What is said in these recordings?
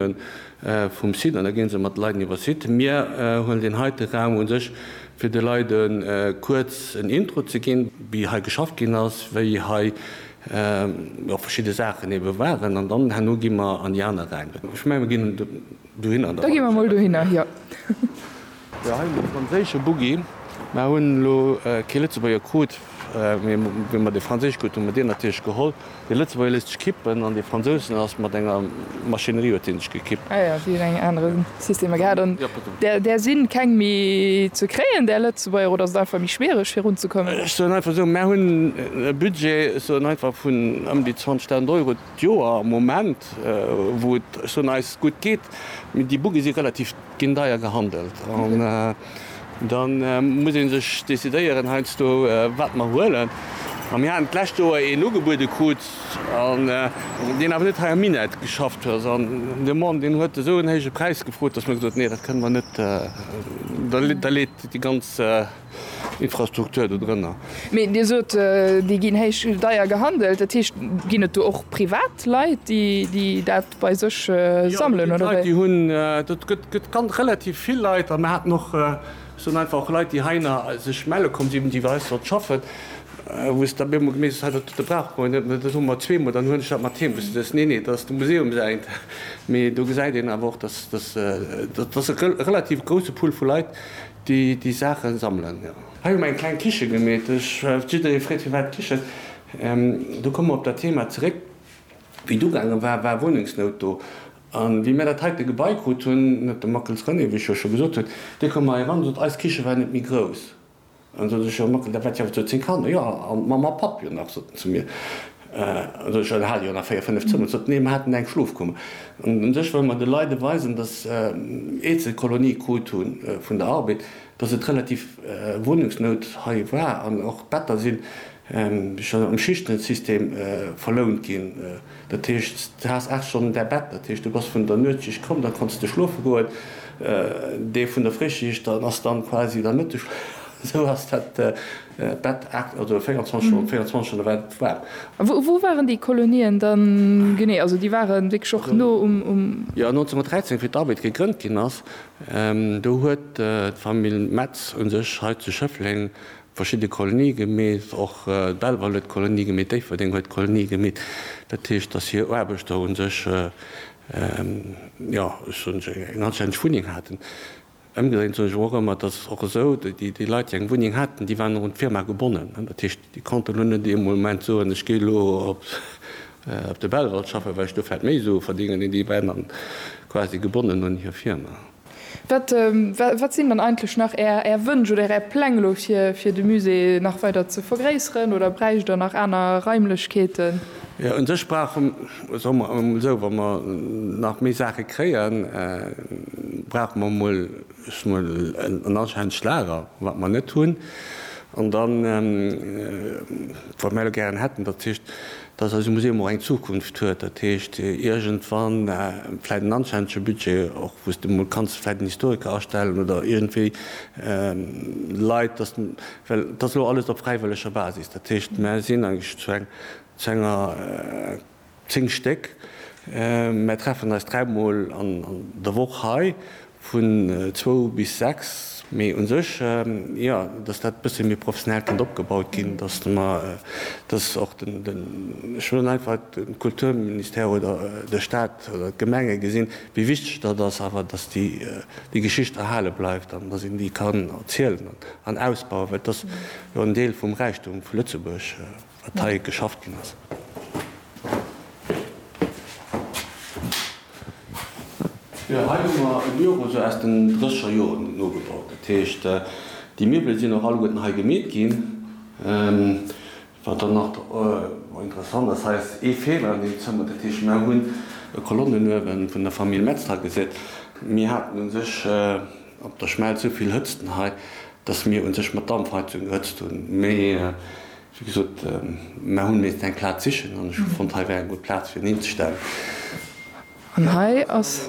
vum Site an da ginn se mat de Leiden iwwer Site. Mir huelen deen heite Raum un sech fir de Leide kuerz en Intro ze ginn, wéi hei geschafft ginn ass, wéi hei verschidde Saachen ebe waren an dann herno gi mer an déi aner Räim. Ech menge mir ginn dohinner. Da gi mer mol dohinner, jo. Jo hei hunn e franséische Buggi. Mer hunn elo kee Lëtzebuerger krut, mee wéi mer dee franséische krut hu mer deen natierlech geholl. Dee Lëtzebuerger léisst sech kippen an dee Fransousen ass mat enger Maschinerie huet hie sech gekippt. Ah jo, si hunn eng anere Systemer gehat. An där si keng méi ze kréien, där Lëtzebuerger, oder ass et einfach méi schwiereg virunzekommen? Ech soen einfach esou, mer hunn e Budget, ech soen einfach vun ëm déi 20.000 Euro d'Joer am Moment, wou et, ech soen, eis gutt geet, mee déi Buggie si relativ. Ginn deier gehandelt an da muss ee sech decidéieren heiansdo, wat mer huelen. A mir haten d'lescht Joer een ugebuede krut, deen awer net hei am Minett geschafft huet. An de Mann, deen huet esou en héije Präis gefrot, dass mer gesot hunn, Nee, dat kënne mer net, da leet déi ganz. Infrastruktur do drënner. Mee Dir sot, déi ginn héich, deier gehandelt. Dat heescht, ginn et do och privat Leit, déi dat bei sech sammelen, oder wéi? Jo, et ginn Leit, déi hunn. Dat gëtt, gëtt ganz relativ vill Leit. An mir haten och, ech soen einfach, och Leit, déi heihinner sech melle komm sinn, déi bei eis sollten schaffen, wou se da mir emol gemeet hunn, Hei, dat, dat brauche mer jo net, dat hu mer zweemol. Dann huelen ech dat mat heem. Wou se da sot, Nee, nee, dat ass de Museum säint. Mee do gesäit een awer och, dass, dass, dass e relativ grousse Pool vu Leit, Déi Saachen sammelen, jo. Hei hu mer eng kleng Kiche gemeet. Ech well jidderee freet, firwat d'Kichen? Do komme mer op dat Thema zeréck. Wéi d'ugaange war, war Wunnungsnout do. A wéi mir dat heite Gebai krut hunn, huet de Mackels René, wéi ech jo scho gesot hunn, dee koum hei eran a sot, eis Kiche war net méi grouss. An da sot ech, Jo Mackel, dat wat jo awer zu zéng Kanner, jo, a Mamm a Papp jo nach, sot en zu mir. Also ech hat jo nach véier, fënnef Zëmmer. Sot, Nee, mer haten eng Schlofkummer. An un sech wëlle mer de Leide weisen, datt iert se d'Kolonie krut hu vun der Arbed, datt et relativ Wunnungsnout hei war an och d'Better si schonn am Schichtensystem verlount ginn. Dat heescht, s de has aacht Stonnen däi Bett. Dat heescht, du bass vun der Nuetsschicht komm, da konnts de schlofe goen. Dee vun der Fréischicht ass dann quasi der Mëtteschlaf. Esou ass dat. Bett 8 oder 24 oder 24 Stonne war et waarm. A wou waren déi Kolonien dann genee? Also déi ware wierklech och no um. Jo, 1913, wéi d'ARBED gegrënnt ginn ass, do huet d'Famill Metz u sech hei zu Schëffleng verschidde Kolonie gemeet. Och d'Belval huet Kolonie gemeet, Déifferdeng huet Kolonie gemeet. Dat heescht, datt hir Aarbechter u sech, jo, ech soen eng anstänneg Wunneng haten. Ëmgedréint soen ech awer och ëmmer, dass och esou déi Leit, déi eng Wunneng haten, déi waren och un d'Firma gebonnen. Dat heescht, déi konnten elo net ee Moment soen, ech gehe elo op de Belval schaffen, well ech do vläicht méi Sue verdéngen, mee déi waren dann quasi gebonnen un hir Firma. Wat, wat sinn dann eigentlech nach Är Wënsch oder Är Pläng elo fir de Musée nach weider ze vergréisseren oder bräicht Der nach aner Raimlechkeeten? Un sech brauche, soe mer emol esou, wa mer nach méi Saache kréien, brauche mer emol, ech soe mol, en anstännegt Lager, wat mer net hunn. An da, wat mer elo gären hätten, dat heescht, dass eise Museum och eng Zukunft huet, dat heescht iergendwann vläicht en anstännege Budget, och wou s de mol kanns vläicht en Historiker astellen oder iergendwéi Leit, dass Well et ass elo alles op fräiwëlleger Basis. Dat heescht, mär sinn eigentlech zu eng, zu enger, zéng Stéck, mär treffen eis dräi Mol an der Woch hei, vun zwou bis sechs. Mee u sech, jo, datt dat e bësse méi professionell kënnt opgebaut ginn, datt mer, datt och den, ech soen einfach, de Kulturministère oder de Staat oder d'Gemenge gesinn, Wéi wichteg dat ass awer, dass déi Geschicht erhale bleift an dass een déi kann erzielen an ausbauen, well et ass jo en Deel vum Räichtum vu Lëtzebuerg, wat hei geschafft ginn ass. Jo, hei hu mer e Büro esou aus den drësseger Joren nogebaut. Dat heescht, déi Miwwele sinn och alleguerten hei gemeet ginn. Wat dann nach interessant ass, hei ass ee Feeler an deem Zëmmer, dat heescht, mer hunn e Kolonnenuewe vun der Famill Metz hei gesat. Mir haten u sech op der Schmelz esou vill Hëtzten hei, dass mir u sech mat Dampfheizung gehëtzt hunn. Mee wéi gesot, mer hu miissten eng Plaz sichen an ech hu fonnt, hei wär eng gutt Plaz fir en hinzestellen. An hei ass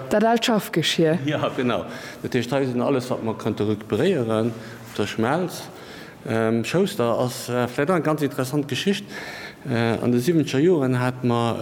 dat aalt Schaffgeschir. Jo, genau. Dat heescht, hei sinn alles, wat mer konnte recuperéieren op der Schmelz. Schouster ass vläit och eng ganz interessant Geschicht. An de siwwenzeger Joren hate mer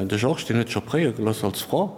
de Georges, deen huet scho préier geloss als Franc.